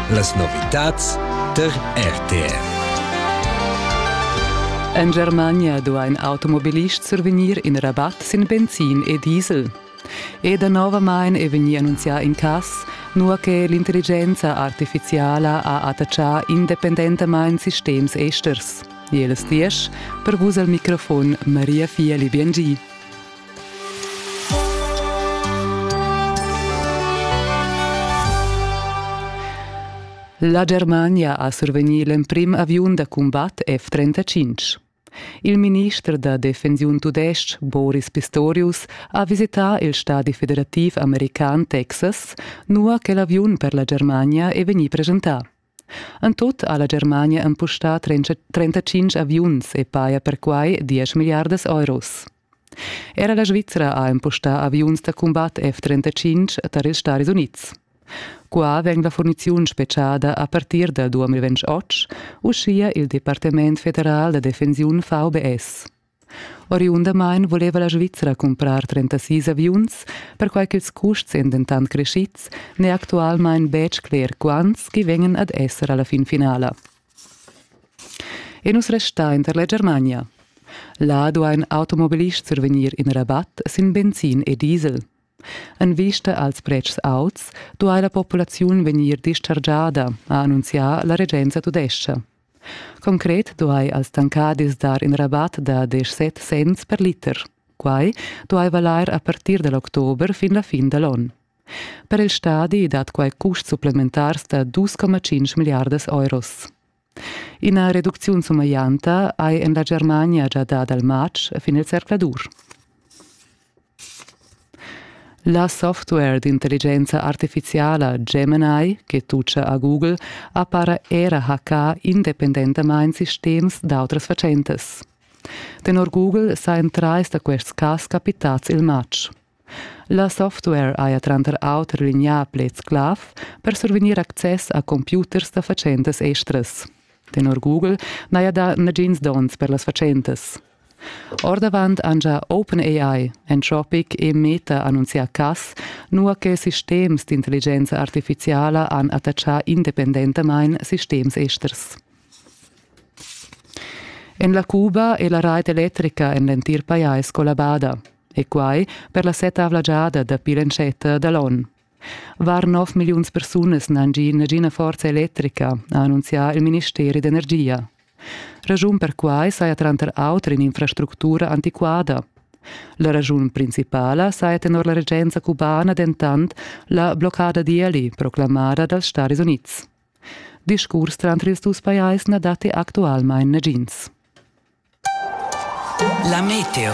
Las novitads tar RTR. En Germania duain automobilists survegnir in rabatt sin benzin e diesel. E danovamain è vegnì annunzià in cass, nua che l'intelligenza artifiziala ha attaccà independentamain sistems esters. Jeles diesch, per vus al microfon Maria Fieli Biengi. La Germania ha survegnì l'emprim aviun da cumbat F-35. Il minister da defensiun tudestg Boris Pistorius ha visità il stadi federativ american Texas, nua che l'aviun per la Germania è vegnì presentà. En tut ha la Germania empustà trentacinc aviuns e paja perquai diesch milliardas euros. Era la Svizra ha empustà aviuns da cumbat F-35 tar ils Stadis Unids. Qua vegn la furniziun spetgada a partir dal 2028, uschia il Departament federal da defensiun VBS. Oriundamain vuleva la Svizra cumprar 36 aviuns, perquai ch'ils custs èn dentant creschids, n'è actualmain betg cler quants ch'i vegnan ad esser a la fin finala. E nus restain tar la Germania. Là duain automobilists survegnir in rabat sin benzin e diesel. En vista als pretschs auts duai la populaziun vegnir dischargiada, ha annunzià la regenza tudescha. Concret duai als tancadis dar in rabat da desch set cents per liter. Quai duai valair a partir da l'october fin la fin da l'onn. Per il stadi dat quai custs supplementars da 2,5 milliardas euros. Ina reducziun sumeglianta hai en la Germania gia dà dal matg fin il zercladur. La software d'intelligenza artificiala Gemini che tutscha a Google ha para era hackà independentamain sistems d'autras fatschentas. Tenor Google sajan trais da quests cas capitads il matg. La software haja tranter auter lignà pleds clav per survegnir access a computers da fatschentas estras. Tenor Google n'haja dà nagins donns per las fatschentas. Ordavant han gia OpenAI, Anthropic e Meta annunzià cass, nua che sistems d'intelligenza artifiziala han attachà independentamain sistems esters. En la Cuba è la rait electrica en l'entir pajais collabada, e quai per la settavla giada dapi l'entschatta da l'onn. Var 9 milliuns persunas n'han gì nagina forza electrica, ha annunzià il ministeri d'energia. Raschun per quai saja tranter auter in'infrastructura antiquada. La raschun principala saja tenor la regenza cubana dentant la bloccada d'ieli proclamada dals Stadis Unids. Discurs tranter ils dus pajais na datti actualmain nagins. La meteo.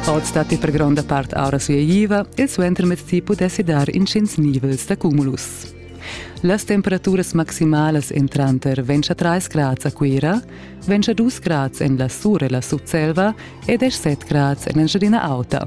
Oz datti per gronda part aura sueiva e suentermezdi pudessi dar intgins nivels da cumulus. Las temperaturas maximalas èn tranter 23 grads a Cuira, 22 grads en la Sur e la Sutselva e 17 grads en Engiadina Auta.